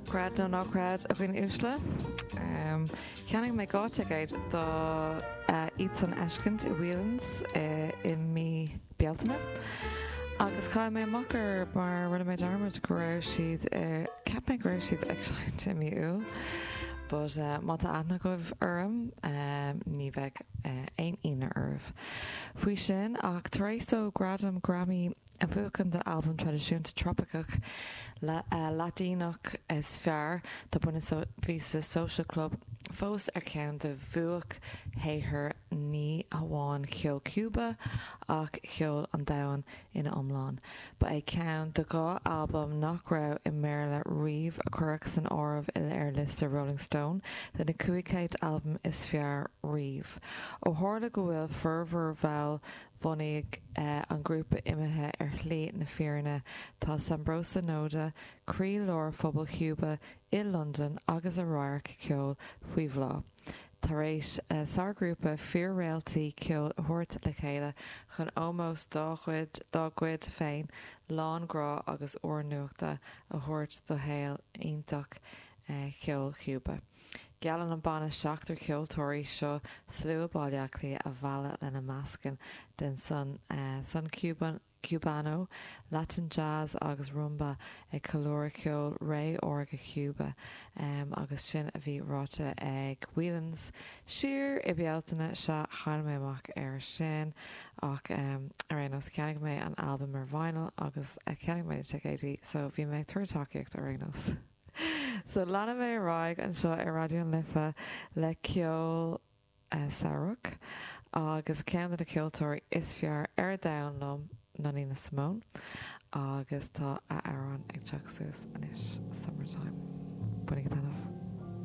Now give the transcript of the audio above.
Creid nó ná creid a dhaoine uaisle, cheannaigh mé dhá thicéad dóibh siúd a fheiscint i Whelan's i mí Bealtaine agus chaill mé amach orthu mar rinne mé dearmad go raibh siad, cheap mé go raibh siad ag seinnt i mí Iúil but má tá aithne agaibh orm ní bheidh aon ionadh oraibh faoi sin. Ach tar éis dó gradam Grammy A bhuachan don Albam Traidisiúnta Tropaiceach Laidineach is fearr tá Buena Vista Social Club fós ar cheann de bhuaicshaothair ní hamháin cheol Cúba ach cheol an domhain ina iomlán. Ba é ceann de dhá albam nach raibh i mBéarla riamh a cuireadh san áireamh ar liosta Rolling Stone de na 500 albam is fearr riamh. Ó tharla go bhfuil formhór bhaill Bhunaidh an ghrúpa imithe ar shlí na fírinne, tá Sambroso Noda, croí lár phobal Chúba i Londain agus a radharc ceoil faoi bhláth, tar éis sárghrúpa fíor-réaltaí ceoil a thabhairt le chéile chun ómós dá gcuid féin lán grá agus úrnuachta a thabhairt do shaol iontach cheol Chúba. Geallann an banna seachtar ceoltóirí seo slua Bhaile Átha Cliath a mhealladh lena meascan den son, son Cubano, Latin Jazz agus Rumba ag ceiliúradh ceol Ré Órga Chúba agus sin a bhí ráite ag Whelan's siar i Bealtaine, sea, chaill mé amach ar sin ach ar aon nós cheannaigh mé an albam ar vinyl agus cheannaigh mé na ticéidí so bhí mé ag tabhairt tacaíocht ar aon nós. So leanfaidh mé ar aghaidh anseo ar Raidió na Life le ceol samhraidh agus ceann de na ceoltóirí is fearr ar domhan liom ná Nina Simone agus tá a hamhrán ag teacht suas anois, Summertime. Bainigí taitneamh.